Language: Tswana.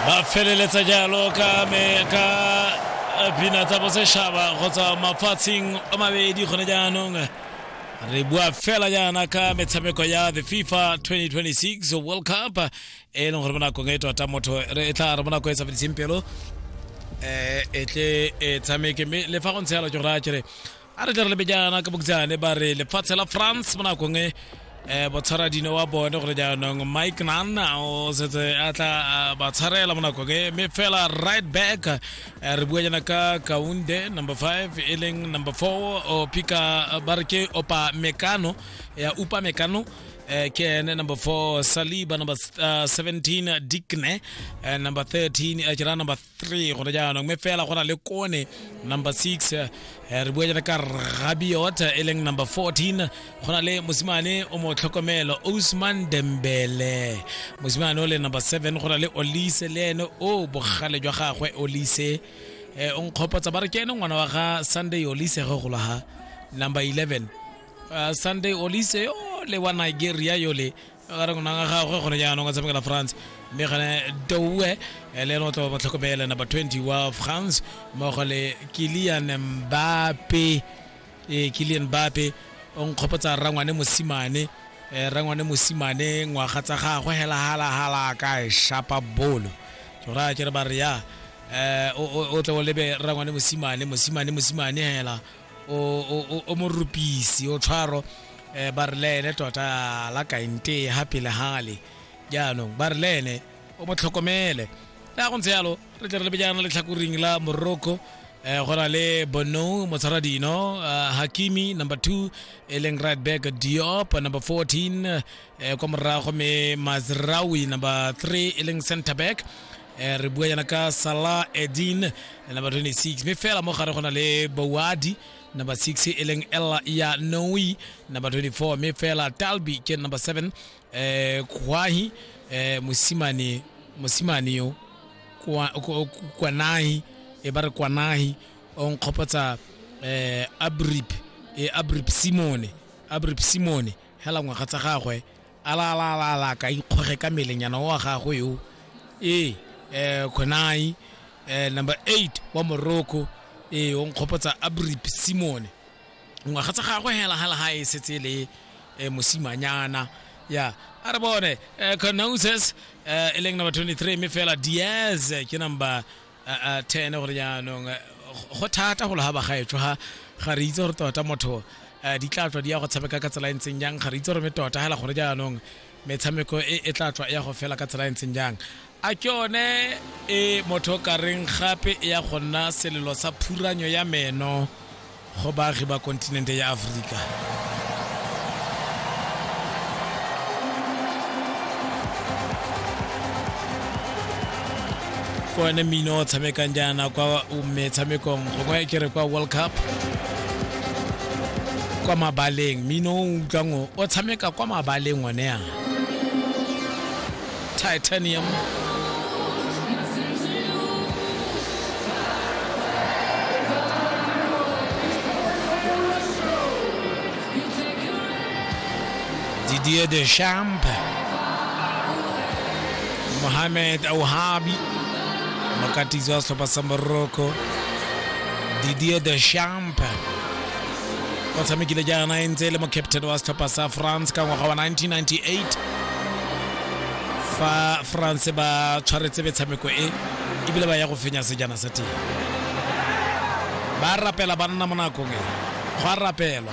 ba feleletsa jalo ka me ka eh, pina tsa bosešhaba go tswa mafatsheng a mabedi gone jaanong re bua fela jaana ka metshameko ya the fifa 2026 world cup e leng gore mo nakong e tota motho re e tla re mo nakong e sa fediseng pelo um e tle e tshameke mme le fa go ntse yalo ke go raya kere a re ka re lebejana ka bokjane ba re lefatshe la france mo nakong e um botshwaradino wa bone gore jaanong mike nanna o setse a tla ba tshwarela mo nakong e mme fela right back eh, re bua jana ka kaunde number five e leng number four o pika ba re ke opa mekano ya upa mekano Eh, ke ene number 4 saliba number uh, 17 dikne uh, number 13 uh, kira number three gone jaanong mme fela go na le kone number six eh, re bua jaana ka rabiot e leng number 14 go na le mosimane o mo tlhokomelo osman dembele mosimane o le number 7 go na le olise le ene o bogale jwa gagwe olise eh, o nkgopotsa ba re ke ene ngwana wa ga sunday olise ge golo ha number 11 uh, sunday olise yo le wa nigeria yole ka gare go naga gagwe gone jaanong a tshamekela france mme gane doue eh, le ene o tla ba motlhokomele number 20 wa france mmogo le kilian mbape ee kilian mbape o nkgopotsa rangwane mosimane um rangwane mosimane ngwaga tsa gagwe hela halahala ka e shapa bolo ke go raya kere ba re ya um o tle o lebe rangwane mosimane mosimane mosimane hela o o- o- o morupisi o tshwaro um ba re le ene tota la kaente ga pele gale jaanong ba re le ene o mo tlhokomele ya go ntse yalo re tle re lebejana letlhakoring la morocco eh go na le bono motshwara dino ah, hakimi number 2 e leng right back diop number 14 eh kwa morago me mazrawi number 3 e leng center back Eh, re bua yana ka salah edin number 26 mme fela mo gare go na le bowadi number 6 e leng ella ya noi number 24 mme fela talbi ke number 7 eh, kwahi eh, mosimane mosimane yo Kwa- kwa- kwanahi e ba re kwanahi o nkgopotsa eh, abrip e abrip simone abrip simone hela ngwaga tsa gagwe Alaalaalaalaa ka ikgoge ka melenyana wa gagwe yo ee um khonai um number eight wa morocco ee o nkgopotsa abrip simone ngwaga tsa gagwe hela hela ha e setse le um mosimanyana ya a re bone um conoses um e leng number 23 mme fela diaz ke number 10 gore jaanong go thata go lo ga bagaetsho ga ga re itse gore tota motho di tla tswa di ya go tshameka ka tsela e ntseng jang ga re itse gore me tota hela gore jaanong metshameko e, e tla tswa e ya go fela ka tsela e ntseng jang a ke one e motho ka reng gape e ya go nna selelo sa phuranyo ya meno go baagi ba kontinente ya Aforika. Ke one mmino o tshamekang jaana kwa metshamekong gongwe ke re kwa World Cup kwa mabaleng mmino o utlwang o tshameka kwa mabaleng one a Titanium. Didier Deschamps. Mohamed Ouhabi. Mokatizi wa setlhopha sa Morocco. Didier Deschamps. o tshamekile jaana e ntse e le mo captain wa setlhopha sa france ka ngwaga wa 1998 fa france ba tshwaretse metshameko e ebile ba ya go fenya sejana sa teng ba rapela ba nna mo nakong e go a rapelwa